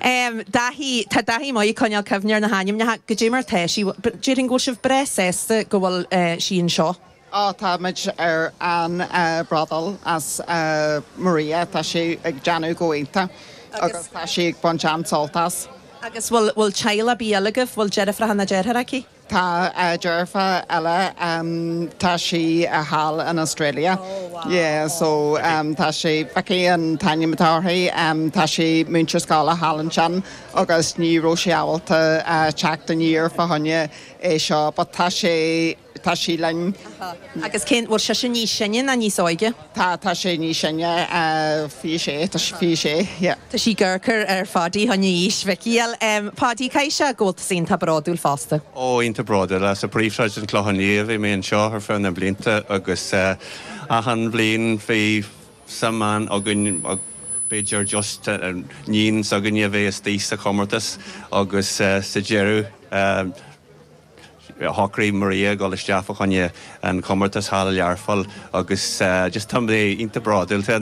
Em, Dáithí, tá Dáithí maith ag coinneáil cuimhne ar na hainmneacha, goidé mar tá sí, but déarfainn go bhfuil sibh breá sásta go bhfuil, eh, sí anseo. Á, táimid an-, eh, bródúil as, eh, Maria, tá sí ag déanamh go iontach agus tá sí ag baint an-sult as. Agus bhfuil, bhfuil teaghlach ar bith eile agaibh, bhfuil deirfiúracha ná deartháireacha aici? Tá deirfiúr eile, tá sí thall in Australia, so tá sí, Vicky an t-ainm atá uirthi, tá sí ina múinteoir scoile thall ansin agus ní raibh sí ábalta teacht aniar fá choinne é seo but tá sí linn. Agus cén, bhfuil sise níos sine ná níos óige? Tá, tá sé níos sine, fiche sé, tá sí fiche sé, yeah. Tá sí gur cur ar Phaidí tháinigh aois Mhicí al. M, Paidí, caithfidh sé go bhfuil tusa iontach bródúil fosta. Ó, iontach bródúil, as príomhshráid an Clochán Liath a bhí mé anseo ar feadh na mblianta agus achan bhliain bhí sa mheon againn, b'fhéidir just níon s'againne a bheith istigh sa chomórtas agus sa deireadh, Shocraigh Maria dul isteach fá choinne an comórtas thall i Learpholl agus just tá mé iontach bródúil, tá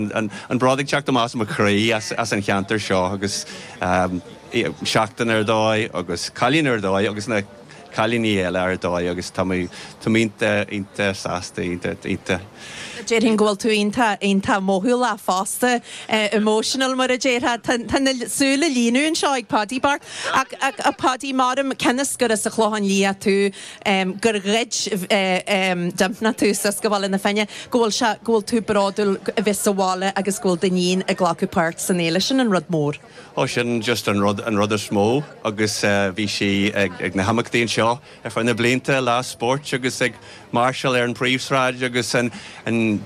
an bród ag teacht amach as mo chroí as an cheantar seo agus seachtain ar dóigh agus cailín ar dóigh agus na cailíní eile ar dóigh agus tá mé iontach, iontach sásta, iontach, iontach. Déarfainn go bhfuil tú iontach, iontach mothúlach fosta, emotional mar a déarfá. Tá, tá na súile ag líonadh anseo ag Páidí bocht. Ach, ach a Pháidí, measaim, cionn is gur as an Chlochán Liath tú, em, gur ghoid, em, Dympna tú suas go Baile na Finne, go bhfuil sé, go bhfuil tú bródúil a bheith sa bhaile agus go bhfuil d'iníon ag glacadh páirt san fhéile, sin an rud mór. Ó, sin just an rud, an rud is mó agus, eh, bhí sí ag, ag na himeachtaí anseo Ar feadh na blianta, lá spóirt agus ag máirseáil ar an bpríomhshráid agus an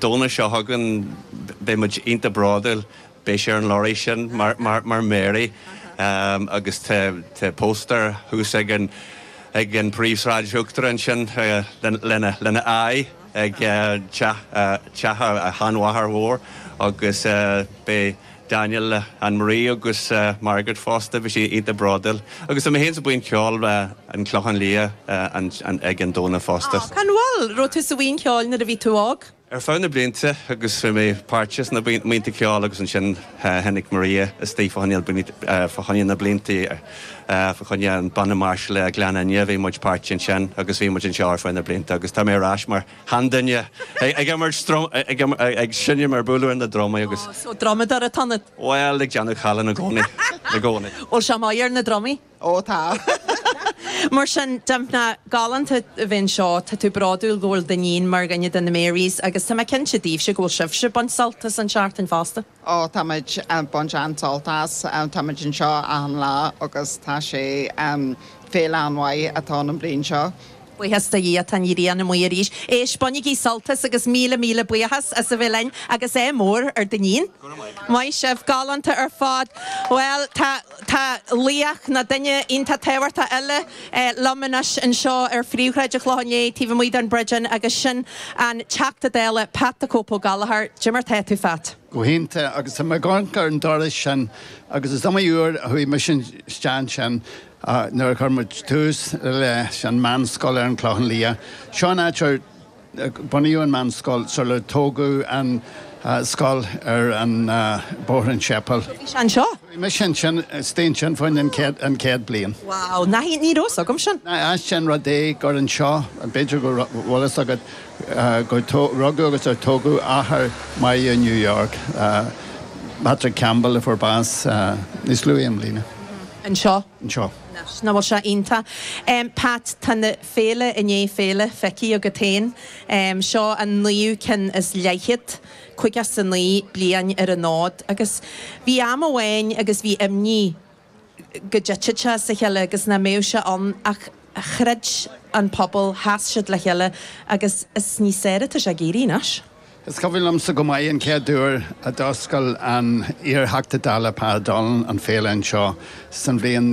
Domhnach seo chugainn, beidh muid iontach bródúil. Beidh sí ar an lorry sin mar Mary agus tá póstaer thuas ag an bpríomhshráid uachtair ansin lena aghaidh ag teach a sheanmháthar mhóir agus beidh Daniel, Ann Marie agus Margaret fosta, beidh siad iontach bródúil. Agus tá mé féin sa bhuíon cheoil an Clochán Liath ar an Domhnach fosta. Aw, an bhfuil? Raibh tú sa bhuíon cheoil nuair a bhí tú óg? Ar feadh na blianta agus bhí mé páirteach sna buíonta ceoil agus ansin tháinig Maria isteach fá choinne na blianta, fá choinne an banna máirseála Gleann Fhinne, bhí muid páirteach ansin agus bhí muid anseo ar feadh na blianta agus tá mé ar ais mar. haon duine. Ag imirt drum, ag seinm ag bualadh ar na drumaí agus. Ó, so drumadóir atá ionat? Bhuel, ag déanamh calláin i gcónaí, i gcónaí. Bhuel, sea, maith ar na drumaí. Ó, tá. Mar sin, Dympna galánta a bhí anseo. Tá tú bródúil go bhfuil d'iníon mar dhuine de na Marys agus tá mé cinnte daoibhse go bhfuil sibhse ag baint sult as an seachtain fosta. Ó, táimid ag baint an-sult as. Táimid anseo achan lá agus tá sé féile an-mhaith atá ann an bhliain seo. Buíochas do Dhia tá an ghrian amuigh arís. Éist, bainigí sult as agus míle míle buíochas as a bheith linn agus ádh mór ar Duinnín. Maith sibh, galánta ar fad. Bhuel, tá. Tá laoch nó duine iontach tábhachtach eile liom anois anseo ar phríomhshráid an Chlocháin Léith, taobh amuigh den Bridge Inn, agus sin an Teachta Dála, Pat 'The Cope' Ó Gallachóir. Cad é mar tá tú, Phat? Go hiontach. Agus tá mé ag amharc ar an doras sin agus is iomaí uair a chuaigh mise isteach ansin nuair a chuir muid tús leis an mheánscoil ar an Chlochán Liath. Seo an áit ar. Bunaíodh an mheánscoil sular tógadh an scoil ar an Bóthar an tSéipéil. Bhí sé anseo? Bhí mise ansin, istigh ansin fá choinne an chéad bliain. Wow, ní raibh fhios agam sin. Nach ait an rud é gur anseo, b'fhéidir go raibh fhios agat, gur rugadh agus ar tógadh athair Mary New York, Patrick Campbell a fuair bás níos luaithe i mbliana. Anseo? Anseo. Anois, nach bhfuil sé iontach. Pat, tá na. Féile i ndiaidh féile, feicthe agat féin. Seo an naoú ceann is leathchéad, caoga is a naoi bliain ar an fhód. Agus bhí am amháin agus bhí imní go dtitfeadh sé as a chéile agus nach mbeadh sé ann ach chreid an pobal, sheas siad le chéile agus is níos fearr atá sé ag éirí anois. Is cuimhin liomsa go maith an chéad uair a d'fhoscail an iar-Theachta Dála Pa O'Donnell an féile anseo san bhliain